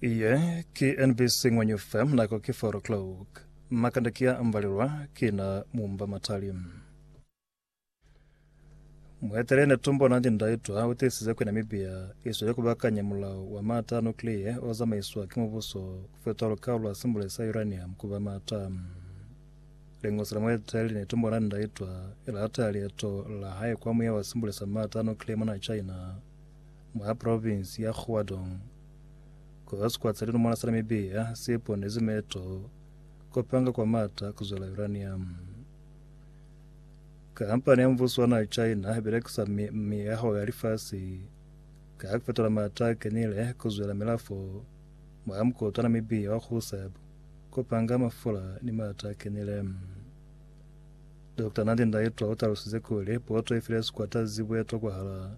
Iye ki NBC Ngwenyu FM nako ki 4 o'clock. Makanda ki a ambalelwa ki na mumba matali. Mueteleli netumbo Nandi Ndaitwa utiisize kwi Namibia isweli kubakanya mulao wa maata a nuclear ozamaiswa ki mubuso kufetoha lukao lwa simbule sa uranium kuba maata. Lingosi la mueteleli netumbo Nandi Ndaitwa ilateya lieto la hae kwa muya wa simbule sa maata a nuclear mona China mwa provinsi ya Guadong, koba sikwa sa lilumo la Namibia si ponezi meto kopanga kwa mata kuzwela uranium. Kampani ya mbuso wa naha China ibelekisa miyaho ya lifasi ka kufetola mata kenile kuzwela milafo mwa mukotwa Namibia wa Gusab kopanga mafula ni mata kenile. Dr. Nandi Ndaitwa utalusize kuli poto ifile sikwata zibwetwa kwahala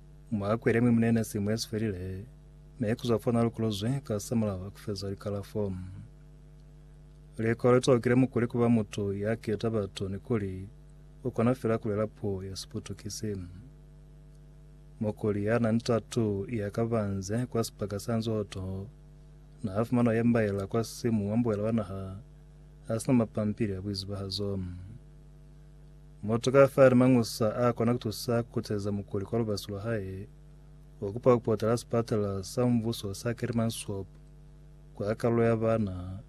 Mwakwele mwi munene simu yesifelile, mi kuzwa fo nalukuluzwi ka samulaho kufeza likalafo. Likolo litokile mukuli kuba mutu ya keta batu ni kuli ukona fela kulela puo ya siputukisi. Mukuli ya na ni tatu ya kabanze kwa sipaka sa nzoto na afumana ya mbaela kwa simu wa mbuela wa naha asina mapampili ya buizibahazo. Mutu ka fani mañusa a kona kutusa kukuteza mukuli kwa lubasi lwa hae wa kupa kupota la sipatala sa mbuso sa Kearmansop kwa kalulo ya bana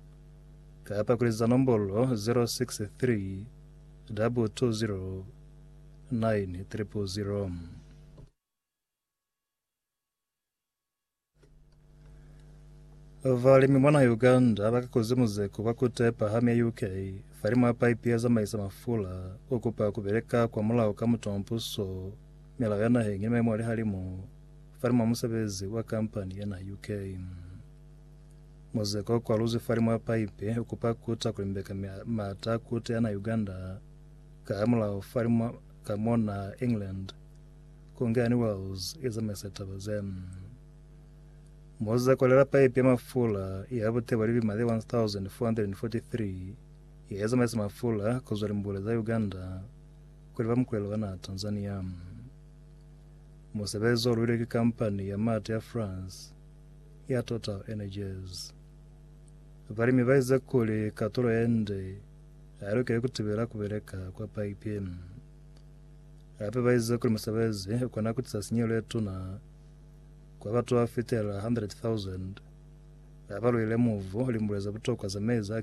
kapa kuliza nombolo 063 220 9000. Balimi mwana Uganda bakakoze muzeko kwa kutepa hamu ya UK falimu ya paipi ya zamaisa mafula ukupa kubeleka kwa mulao ka mutu wa mpuso milao ya naheng ni maemo a lihalimu falimu ya musebezi wa kampani ya naha UK muzeko kwa luzi falimu ya paipi ukupa kuta kulimbeka mata kute ya na Uganda ka mulao falimu ka mona England Kongani Wells i zamaisa taba ze. Moza kolela paipi ya mafula ya butebo li limale 1443 ye zamaisa mafula ku zwa limbule za Uganda ku liba mukulelo wa naha Tanzania. Musebezi o luilwe ki kampani ya mati ya France ya Total Energies. Balimi ba ize kuli katulo ye nde ha lukeli ku tibela ku beleka kwa paipi. Hape ba ize kuli musebezi u kona ku tisa sinyehelo ye tuna kwa batu ba fitela 100,000 ba ba lwile mubu limbule ze butokwa ze mezi a